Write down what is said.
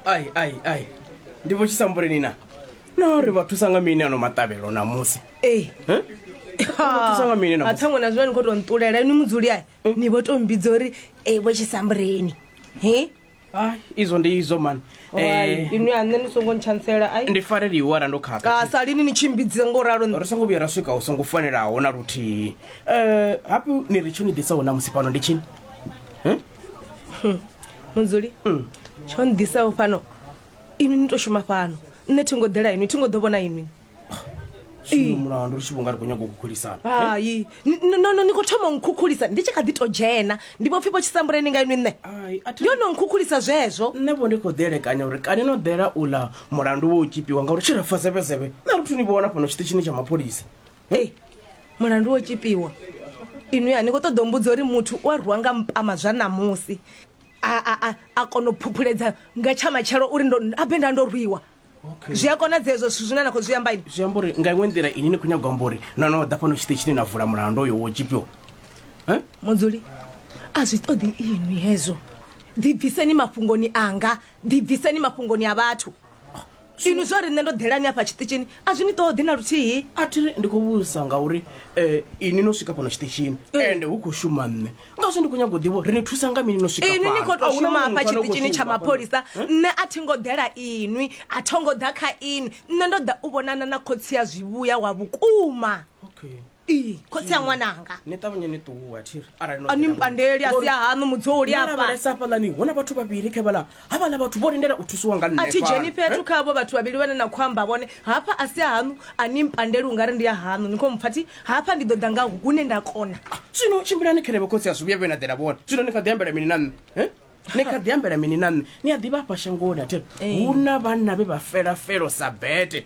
ai ai ai ndi vho tshisambuleni na no ri vha thusa nga mini ano maṱavhelo namusi ee Eh? thusa nga mini namusi atshaṅwe na zwino ni khou tou nṱulela inwi mudzuli ai ni vho tou mbidza uri e vho tshisambuleni he ai izwo ndi izwo mani Wai, inwi a nṋe ni songo ntshansela ai ndi fareliwa ra ndo khata ka sa lini ni tshimbidze ngo ralo ri songo vhuya ra swika u songo fanelaho na luthihi um hapi ni ri tsho ni ḓisaho namusi fhano ndi tshini Hmm. mudzuli hmm. tsho nḓisaho fhano inwi ni to shuma fhano nṋe thi ngo ḓela inwi thi ngo ḓo vhona inwi mulandu ri tshi vhunga ri khou nyaga u khukhulisa hai nono ni khou thoma nkhukhulisa ndi tshi kha ḓi to dzhena ndi vho pfhi vho tshisambuleni nga inwi nṋe yo no nkhukhulisa zwezwo nṋe vho ndi khou ḓielekanya uri kani no ḓela u ḽa mulandu wo u tshipiwa ngauri tshi ri fa zevhezevhe nṋe ri thu ni vhona fhano tshiṱitshini tsha mapholisa hei mulandu wo tshipiwa inwi a ni khou ṱoḓa u mbudza uri muthu u a rwiwa nga mpama zwa ṋamusi a a a a kona u phuphuledza nga tsha matshelo uri ndo a be nda ndo rwiwa zwi a konadzea hezwo zwithu zwine na khou zwi amba ini zwi amba uri nga iṅwe nḓila ini ni khou nyagwa amba uri no no ḓa fhano tshiṱitshini na vula mulando uyo wo tshipiwa Eh? mudzuli a zwi ṱoḓi inwi hezwo ḓibviseni mafhungoni anga ḓibviseni mafhungoni a vhathu inu zwa ri nṋe ndo ḓelani afha tshiṱitshini a zwi ni ṱoḓi na luthihi a thi ri ndi khou vhudzisa ngauri um ini no swika fhano tshiṱitshini ende hu khou shuma nṋe ngazwo ndi khou nyago ḓivho ri ni thusa nga mini no swika inwi ni khou to shuma afha tshiṱitshini tsha mapholisa nṋe a thi ngo ḓela inwi a tho ngo ḓa kha inwi nṋe ndo ḓa u vhonana na khotsi ya zwivhuya wa vhukuma okay. iyi khotsi ya ṅwananga ni ṱavhanye ni ṱuwa thiri arali no a ni fhela- mpandeli a si ya haṋu mudzoli Ni afha lavhelesa hafhaḽani huna vhathu vhavhili kha vhala havhala vhathu vho lindela u thusiwa nga nṋe a thi dzheni fhano. fhethu kha avho vhathu vhavhili vhane na khou amba vhone hafha a si a haṋu a ni mpandeli u nga ri ndi ya haṋu ni khou mpfa thi hafha ndi ḓo ḓa nga hune nda kona zwino tshimbilani khelevho khotsi a zwi vhuya vhe na ḓela vhone zwino ni kha ḓi ambela mini na nṋe eh? ni kha ḓi ambela mini na nṋe ni a ḓivha afha shangoni athiri hu na vhanna vhe vha fela felo sa bete